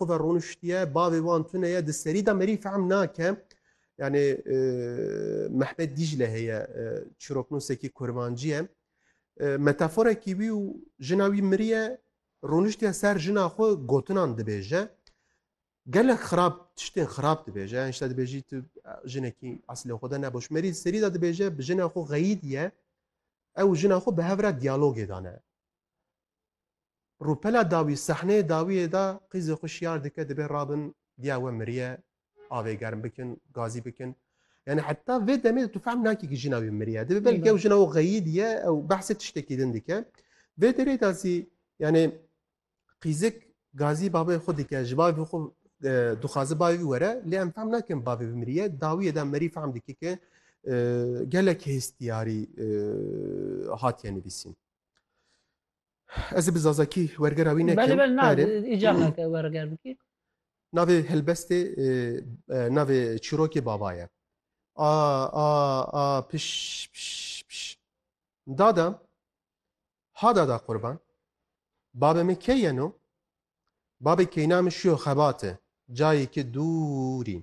xwe ve roniştiye, bavê wan tune ye, di serî de merî fehm nake. Yani e, Mehmet Dicle heye e, çiroknûsekî kurmancî ye. E, metaforekî wî û jina wî miriye roniştiye ser jina xwe gotinan dibêje. Gelek xirab tiştên xirab dibêje. Yani işte dibêjî tu jinekî eslê xwe de neboş. Merî serî de dibêje bi jina xwe xeyîdiye. Ew jina xwe bi hev re diyalogê dane. Rûpela dawî, sehneyê dawiyê de qîzê xwe şiyar dike dibê rabin diya we miriye, avê germ bikin, gazî bikin. Yani heta vê demê de tu fehm nakî ki jina wî miriye. Dibê belkî ew jina û xeyî diye, ew behsê tiştekî din dike. Vê derê de zî yani qîzik gazî bavê xwe dike, ji bavê xwe dixwaze bavê wî were, lê em fehm nakin bavê wî miriye. Dawiyê de merî fehm dike ki gelek hêstiyarî hatiye nivîsîn. Ez ê bi zazakî wergera wî nekim. Belê belê na Berê. îcar nake werger bikî. Navê helbestê e, e, navê çîrokê baba ye. A a a piş piş piş. Dada ha dada qurban. Babê min key yeno? Babê keyna min şiyo xebate. Cayê ki dûrî.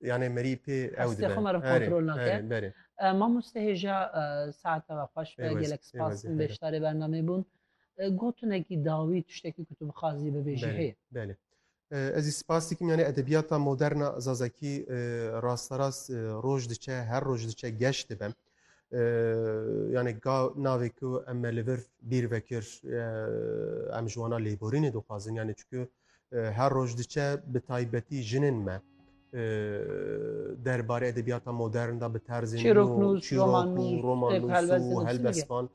Yani merî pê ew Hestê xwe me re kontrol nake. Berê, berê. E, Mamoste hêja e, saete ve xweş be Pêwez, gelek spas pêwez, in beşdarê bernameyê bûn. E, Gotinekî dawî tiştekî ku tu bixwazî bibêjî Belê, heye. belê. E, Ez ê spas dikim yani edebiyata moderna Zazakî e, rasterast e, roj diçe, her roj diçe geş dibe. yani ka navê ku em me li vir bîr vekir em ji wana lêborînê dixwazin yani çikû her roj diçe bi taybetî jinên me derbarê edebiyata modern da bi terzên roman û helbesvan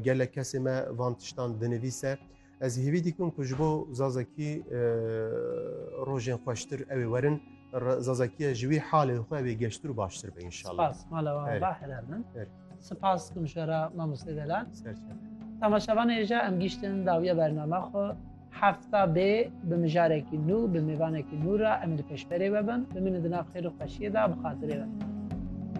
Gelek kesê me van tiştan dinivîse. Ez hêvî dikim ku ji bo Zazakî rojên xweştir ew ê werin. Zazakiye ji wî halê xwe ew ê geştir û baştir be inşallah. Spas mala wan Erê. ba helal min. Erê. Spas kum şera mamostê delal. Ser çe. Temaşevan êja em giştin dawiya bername xwe hefta bê bi mijarekî nû bi mêvanekî nû re em li pêşberê ve bin bi min dina xêr û xweşiyê de bi xatirê ve.